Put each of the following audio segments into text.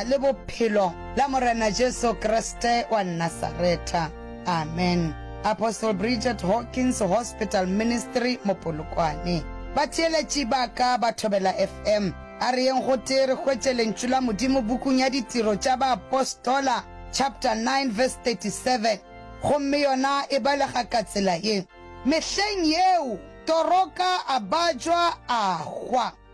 le Bophelo la Morena Jesu Kriste wa Nasaretha. Amen. Apostle Bridget Hawkins Hospital Ministry mo Polokwane. Batheeletši ba ka ba Thobela FM. A re yeng gotee re hwetše Lentšu la Modimo bukung ya Ditiro tša Baapostola chapter 9 verse 37. Gomme yona e balega ka tsela ye, Mehleng yeo Toroka a bajwa a hwa.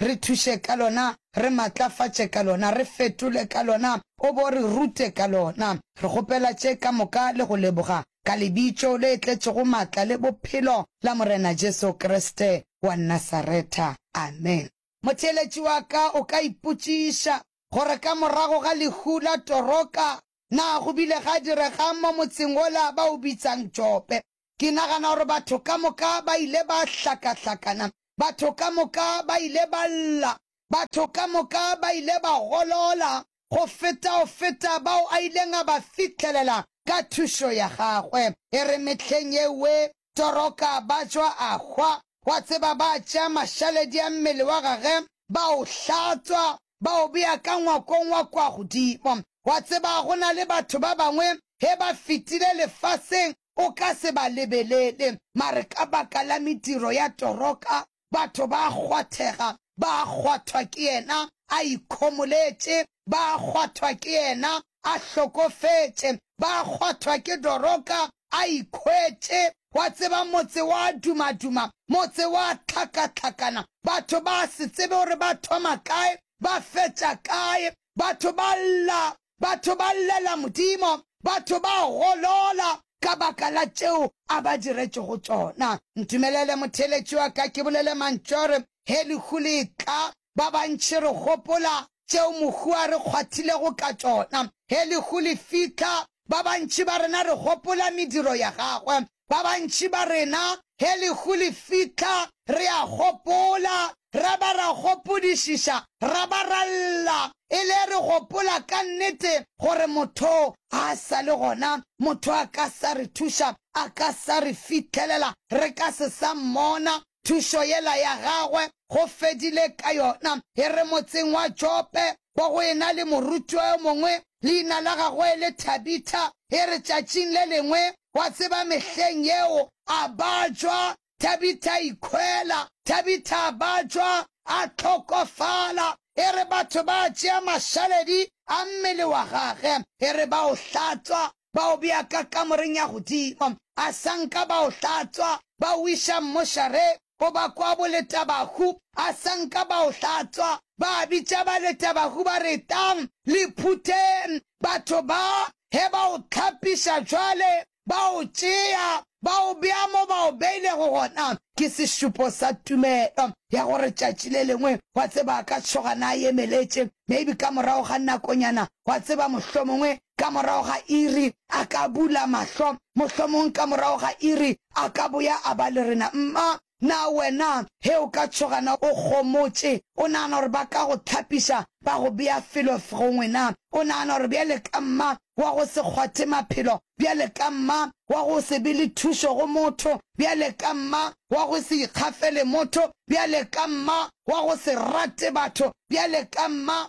re thuše ka lona, re matlafatše ka lona, re fetole ka lona, O bo re rute ka lona. Re kgopela tše ka moka le go leboga, ka Lebitšo le tletšego matla le bophelo la Morena Jesu Kriste wa Nasaretha. Amen. Motheeletši wa ka o ka ipotšiša gore ka morago ga lehu la Toroka, na go bile ga direga'ng mo motseng wola ba o bitsang Jope? Ke nagana gore batho ka moka ba ile ba hlakahlakana. Batho ka moka ba ile ba lla. Batho ka moka ba ile ba golola go feta go feta bao a ileng a ba fihlelela ka thušo ya gagwe. E re mehleng yewe Toroka Bajwa a hwa, wa tseba, ba tšea mašaledi a mmele wa gage ba o hlatswa, ba o bea ka ngwakong wa kwa godimo. Wa tseba, go na le batho ba bangwe, ge ba fetile lefaseng, o ka se ba lebelele, mare ka baka la mediro ya toroka, batho ba a kgwathega, ba a kgwathwa ke yena a ikhomoletše, ba a kgwathwa ke yena a hlokofetše, ba a kgwathwa ke doroka, a ikhwetše. Wa tseba, motse wa dumaduma, motse wa tlhakatlhakana, batho ba se tsebe gore ba thoma kae, ba fetša kae. Batho ba lla, batho ba llela Modimo, batho ba golola ka baka la tšeo a ba diretšego tšona. Ntumelele, motheeletši wa ka, ke bolele mantšu a gore, Ge lehu le etla, Ba bantši re gopola tšeo mohu a re kgwathilego ka tšona. Ge lehu le fihla, ba bantši ba rena re gopola mediro ya gagwe. Ba bantši ba rena ge lehu le fihla re a gopola, ra ba ra gopodišiša, ra ba ra lla, e le re gopola ka nnete gore motho a sa le gona, motho a ka sa re thuša, a ka sa re fithelela, re ka se sa mmona, Thušo yela ya gagwe go fedile ka yona. E re motseng wa Jope go go e na le morutiwa yo mongwe, leina la gagwe e le Thabitha. E re tšatšing le lengwe, wa tseba mehleng yeo, a batšwa, Thabitha a ikhwela. Thabitha a batšwa, a hlokofala. E re batho ba tšea mašaledi a mmele wa gage, e re ba o hlatswa, ba o bea ka kamoreng ya godimo, asanka ba o hlatswa, ba o iša mmošareng goba kwa boletabahu, asanka ba o hlatswa, ba bitša baletabahu ba re, Tlang, le phutheng. Batho ba he ba o hlapiša bjale, ba o tšea, ba o bea mo ba o beilego gona. Ke sešupo sa tumelo ya gore tšatši le lengwe, wa tseba, a ka tšhoga na yemeletše, maybe ka morago ga nakonyana, Wa tseba, mohlomongwe ka morago ga iri a ka bula mahlo, mohlomong ka morago ga iri a ka boya a ba le rena. Mma, na wena he o ka tšhoga na? O gomotše. O nagana gore ba ka go thapiša, ba go bea felo gongwe na? O nagana gore bjale ka mma wa go se kgwathe maphelo, bjale ka mma wa go se be le thušo go motho, bjale ka mma wa go se ikgafele motho, bjale ka mma wa go se rate batho, bjale ka mma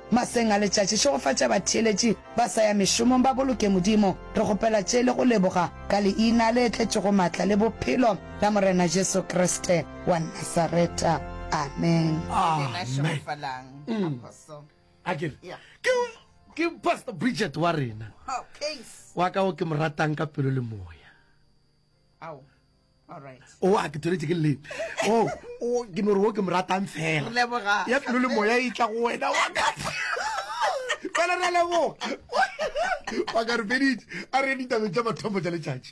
Maseng a letšatši, šegofatša batheeletši ba sa ya mešomong ba boloke Modimo. Re kgopela tše le go leboga ka Leina le tletšego maatla le Bophelo la Morena Jesu Kriste wa Nasareta. Amen. Ke Pastor Bridget wa rena, wa ka o ke mo ratang ka pelo le moya. ao o a ke tsweletše ke leleng o ke no re o ke mo ratang fela ya pelo le moya e tla go wena wa fela re leboga wa ka re feditše a re ditabeng tša mathomo tša letšatši